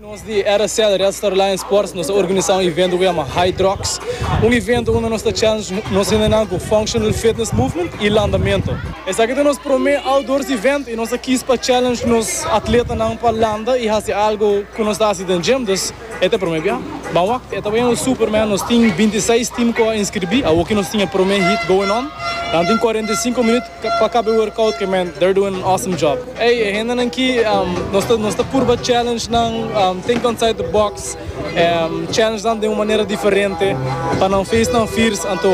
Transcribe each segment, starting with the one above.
Nos di RSL, Red Star Lions Sports, nos a organisá un evento ku yama High Drox. Un evento unda nos ta challenge nos hendenan ku Functional Fitness Movement i landamentu. Esaki ta nos promé outdoors event i nos a kis pa challenge nos atletanan pa landa i hasi algu ku nos ta hasi den gym. Dus e ta e promé biaha. Ban wak, e ta bini un super man. Nos tin binti seis tim ku a inskribí. Awoki nos tin e promé heat going on. Nan tin kuarenta i sinku minüt. Pa kabe workout ke men they're doing an awesome job ey e hendenan ki nos ta nos ta purba challenge nan think outside the box challenge nan den un manera diferente pa nan face nan firs anto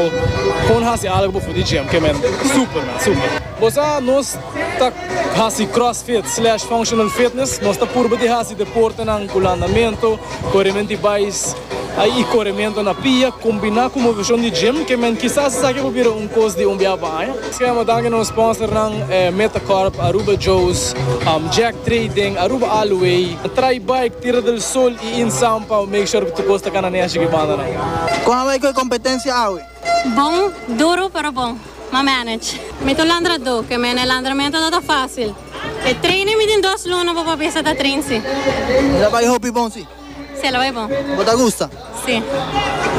pon hasi algo before di gym ke men super men super. Bo sa nos ta hasi crossfit slash functional fitness nos ta purba di hasi deportenan ku landamento, koremen di bais. Ai i korementu na pia kombiná ku moveshon di gym ke men kisas esaki a por bira un kos di un biaha pa aña. Schrema danki nos sponsornan Metacorp, Aruba Joe's, Jack Trading, Aruba Alloy, Try Bike, Tierra del Sol i Insan pa make sure ku tur kos ta kana neshi ku e banda nan. Kon a bai ku e kompetensia awe? Bon, duru pero bon. M'a manage. Mi ta un landradó, ke men e landramentu no ta fásil. E train mi tin dos luna pa papia sa ta train si. Mi ta bai hopi bon si. Sí, ela bai bon. Bo ta gusta? Sí,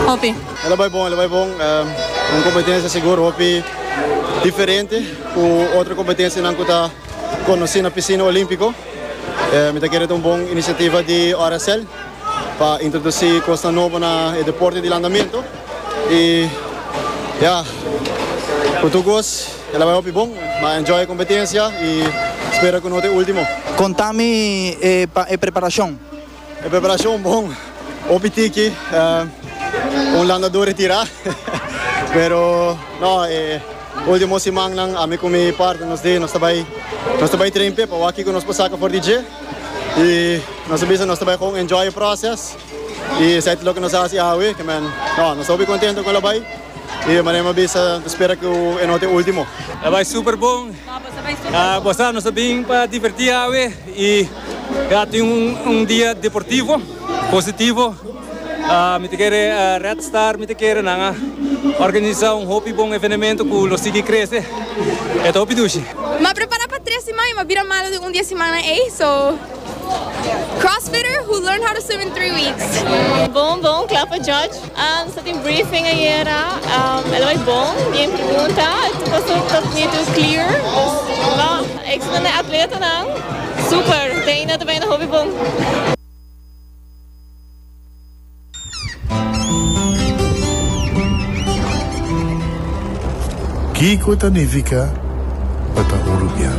hopi. Ela bai bon, ela bai bon. Un competencia sigur hopi diferente cu otro competencianan cu ta conoci na Piscina Olimpico. Mi ta kere ta un bon iniciativa di Oracel pa introduci cosnan nobo na e deporte di landamento. Y ya, cu tur cos ela bai hopi bon. Mi a enjoy e competencia y spera cu no ta e ultimo. Conta mi e pa e preparacion. E preparashon bon, hopi tiki, un landadó retirá, pero no, e último simannan ami ku mi partner nos di nos ta bai nos ta bai train p'e pa wak kiko nos por saka for di dje i nos a bisa nos ta bai kon enjoy e pròses i esei ta loke nos a hasi awe ke men no nos ta hopi kontento kon la bai i de manera mi a bisa mi ta spera ku e no ta e último. Ta bai super bon, bo sa nos a bin pa divertí awe i. Ya tin un dia deportivo, positivo. Mi ta kere Red Star, mi ta kere nan a organisa un hopi bon evenemento ku lo sigui krese. E ta hopi dushi. Mi a prepara pa tres siman i mi a bira malo den un di e simannan ei. So, crossfitter who learned how to swim in three weeks. Bon bon, kla pa judge. Nos a tin briefing ayera, el a bay bon, bien pregunta, tur cos ta bonitu y clear, lo ex nan e atletanan super, te ainda ta benda hopi bon. Kiko ta nifica pa ta un rubian?